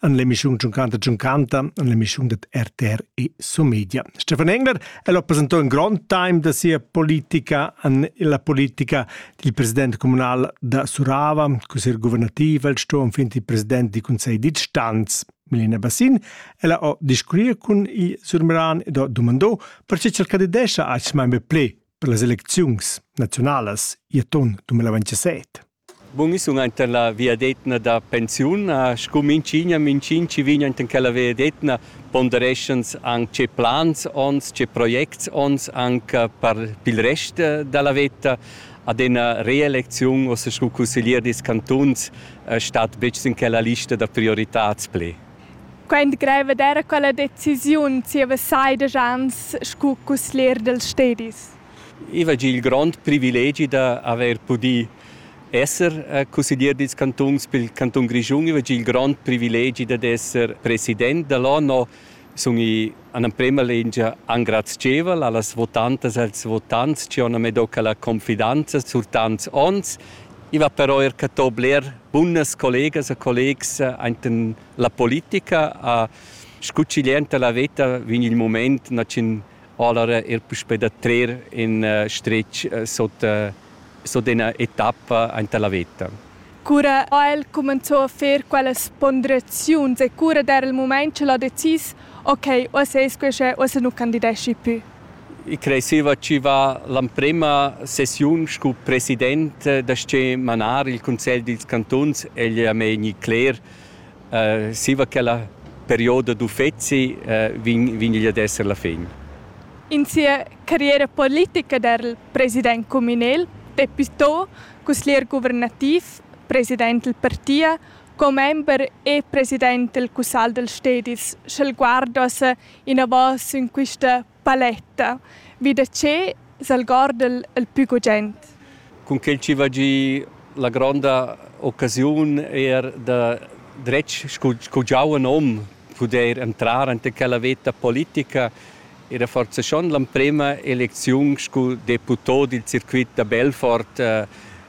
an l'emissiun Giuncanta Giuncanta, an l'emissiun dat RTR e Somedia. Stefan Engler è lo presentò in grand time da sia politica an la politica dil president comunal da Surava, cosir guvernativ, el sto fin il president di consegl di Stanz. Milena Bassin, ella ho discurriu cun i Surmeran ed ho dumandò perché ch'el candidescha a ais member ple per las elecziuns nazionalas i aton 2027. Bun, io sun aint la viadetna da pensiun. Scu minchigna, minchin chi vegn aint in quella viadetna pondereschans anc tge plans ons, tge projects ons anc per pil rest da la veta. Ad ena reelecziun ossa scu cusseglier dils cantuns stat betg sin quella lista da prioritads pli. Quaint greiv ed era quella decisiun zieva seidesch ans scu cusseglier dels stedis. I va gia il grond privilegi da haver pudì esser cusseglier dils cantuns pil cantun Grischun. I va gia il grond privilegi dad esser president dall'ONU. Sun i an emprema lingia engrazievel allas votantas e als votants che han medoca la confidanza sur tants onns. I va però er catò bler bunas collegas e collegs ainten la politica. A scucciglienta la veta vegn il moment nacin Allora er puspei da trer in stretg sot sot ina etappa aint la veta. Cura ha el cumenzò a fer quellas ponderaziuns e cura era il mument ch'el ha decis ok, uossa es que che uossa nu candideschi pü? I creseva chi va l'emprema sessiun scu president da sche manar il cunsegl dils cantuns egl a me gni cler Zieva quella perioda d'uffezi vegn vegn igl ad esser la fin. In sia carriera politica dal president cumünel Peppi To, cusglier guvernativ, president dal partia, commember e president dal cussagl dals stedis sch'el guardass inavò sün quista Paletta, vi da che s'algorda'l il pü gugent? Cun quel chi va giü la gronda occasiun eir da dretg scu scu giauven hom pudair entrar anta quella veta politica era forsa schon l'emprema elecziun scu deputò dil circuit da Belfort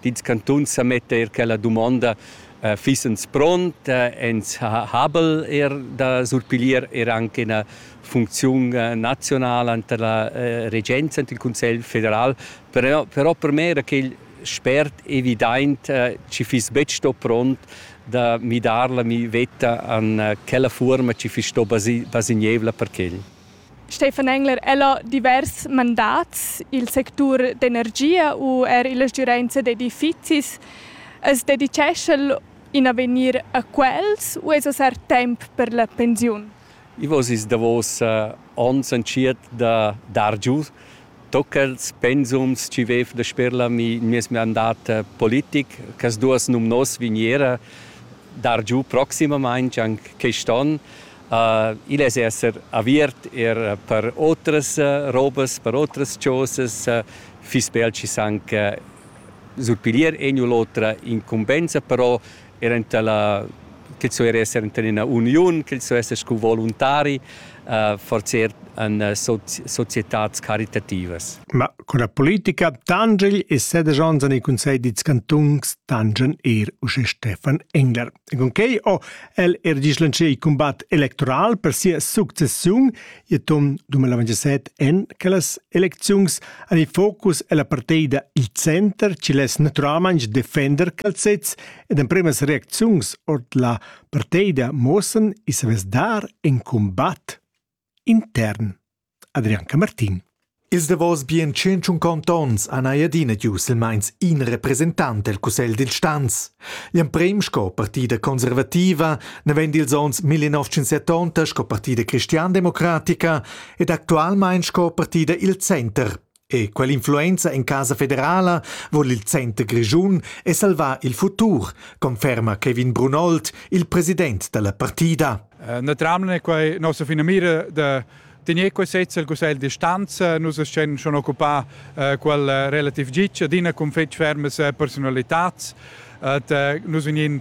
Dils cantuns sa metta er quella dumonda, Fissens pront? Ins ha habel er da surpiglier er anc ina funcziun nazionala enta la regenza, enta il Cussegl federal. Però per me era quel spert evidaint chi fiss betg sto pront da midar la mi veta an quella fuorma chi fiss sto basignevla per quel. Stefan Engler, el ha divers mandats il sectur d'energia u er la stgiurenza d'edifizis. As dedichescha'l in avegnir a quels u es assar temp per la pensiun? I vo sis davos ons entschiet da dar giu tocals pensums chi vef dasper la mi meis mandat politic. Quas duos numnos vegniera dar giu proximamaing anc quist on. Igl è esser aviert er per otras robas, per otras chosas, fiss bel schi sanc surpiglier egn u l'otra incumbensa, però er enta la ch'el sto er esser enta ena uniun, ch'el sto esser scu voluntari, forser en societads caritativas. Ma co la politica tangegl e sedesch onns en il cunsegl dils cantuns tangen er uschè Stefan Engler. E con quei ho el er dislanzchà il combat electoral per sia successiun Tom 2027 en che las elecziuns han il focus ella partida il center ci less naturalmaing defender calzets ed empremas reacziuns ord la partida mossen i savess dar in combat. intern. Adrian Camartin. Ils davos bien tschintschun contonts han ei adina giu silmeins in representant el cussegl dil stanz. L'emprem sco partida conservativa naven dils onns 1970 sco partida cristiandemocratica ed actualmein sco partida il center. E quell'influenza en casa federala vul il center grischun e salvar il futur, conferma Kevin Brunold, il president dalla partida. Eh, naturalment è quai nossa finamira da tener quel sez al Cussegl di stanza. Nus essan schon occupà eh, quel eh, relativ gitg adina con fetg fermes personalitats. Et nus vegnin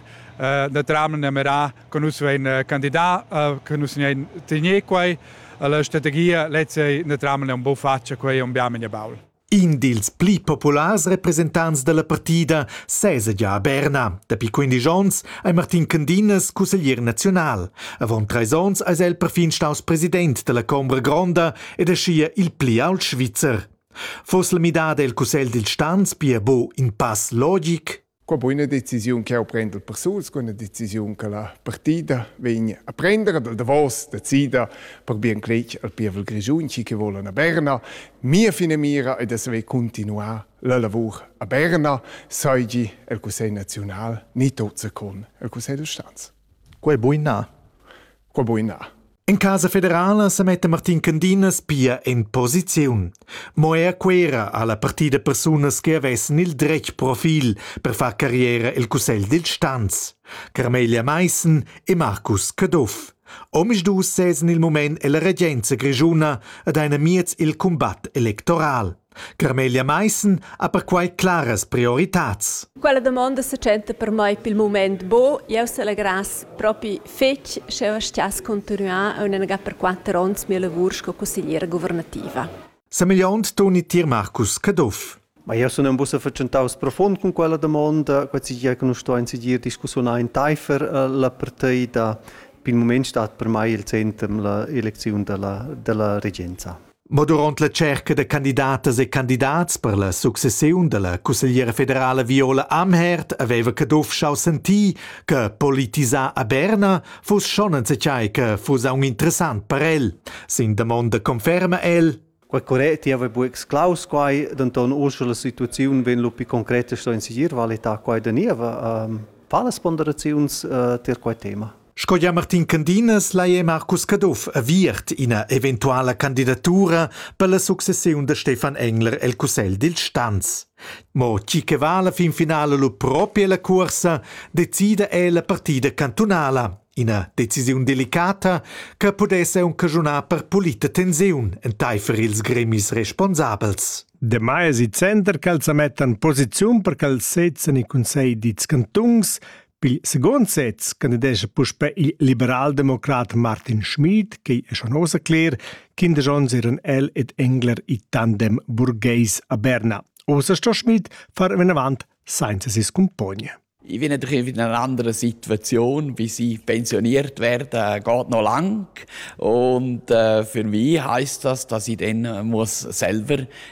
naturalment a mirar Con nus vein candidà, che nus vein tegnì quei, la strategia lezza ne tramen un po faccia quei un biamen ja baul. In dils pli populars representants dalla partida sesa gia a Berna. Dapi 15 onns ei Martin Candinas cusseglier nazional. Avon treis onns eis el perfin staus president dalla Combra Gronda ed aschia il pli ault Svizzer. Foss la midada el cussegl dil stans pia bo in pass logic? Qua bu üna decisiun ch'eu prend dal persuls cun üna decisiun che la partida vegn a prender dal davos decida per bien cletg al pievel grischun chi che volan a Berna. Mia finamira è da saver continuar la lavur a Berna, seigi el Cussegl naziunal ni tot secon el Cussegl d'Ustanz. Quel bui na? Qua buina. In casa federala sa metta Martin Candinas pia en posiziun. Mo er quera ha la partida persunas che avessen il dretg profil per far carriera el Cussegl dil Stanz, Carmelia Meissen e Markus Caduff. Omisdus sezen il moment ella regenza grischuna ad einer miez il combat electoral. Carmelia Maissen ha perquai claras prioritads. Quella damonda se tschenta per mei pil mument bo, jeu selegrass propi fetg sch'jeu stiass continuar aunc per quatter onns mia lavur sco consigliera governativa. Semigliont Toni Tier Marcus Caduff. Ma io sun in bussa fatschentaus profund cun quella domanda, quai che nu sto in sigir discussiun entaifer eh, la partida. Per il moment stat per mai il centrum la elezione della, della regenza. Mo duront la tscherca da candidatas e candidats per la successiun dalla cussegliera federala Viola Amherd haveva Caduff schau sentir che politisar a Berna fuss schon enzatgei che fuss aunc interessant per el. Sin damonda conferma el: Quei correct, io avevo exclaus quai, denton ursche la situaziun vegn lu pi concreta sto in segir valita quai da niva. Fa las ponderaziuns uh, ter quai tema? Sco gia Martin Candinas lai è Marcus Caduff aviert ina eventuala candidatura per la successiun da Stefan Engler el cussegl dil Stanz. Mo tgi che va alla fin finala lu propi ella cuorsa, decida è la partida cantunala. Ina decisiun delicata che pudesse aunc caschunar per pulita tensiun enteifer ils gremis responsabels. Demai es il center ch'els sa mettan posiziun per ch'els sezzan il Consell dils cantuns Pil secund sez candidescha puspè il liberaldemocrat Martin Schmid, che è schon ossa cler, Kinder Jones eran el ed Engler i tandem burgheis a Berna. Ossa sto Schmid far venavant senza si scumpogna. Ich bin natürlich in einer anderen Situation, wie sie pensioniert werden, geht noch lang. Und äh, für mich heißt das, dass ich dann muss selber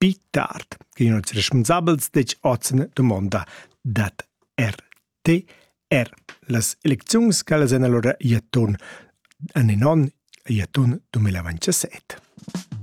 Pli tard vegnan ils respunsabels detg oz en dumonda dad RT er las elecziuns ch'ellas èn alura i atun en in onn e i atun 2027.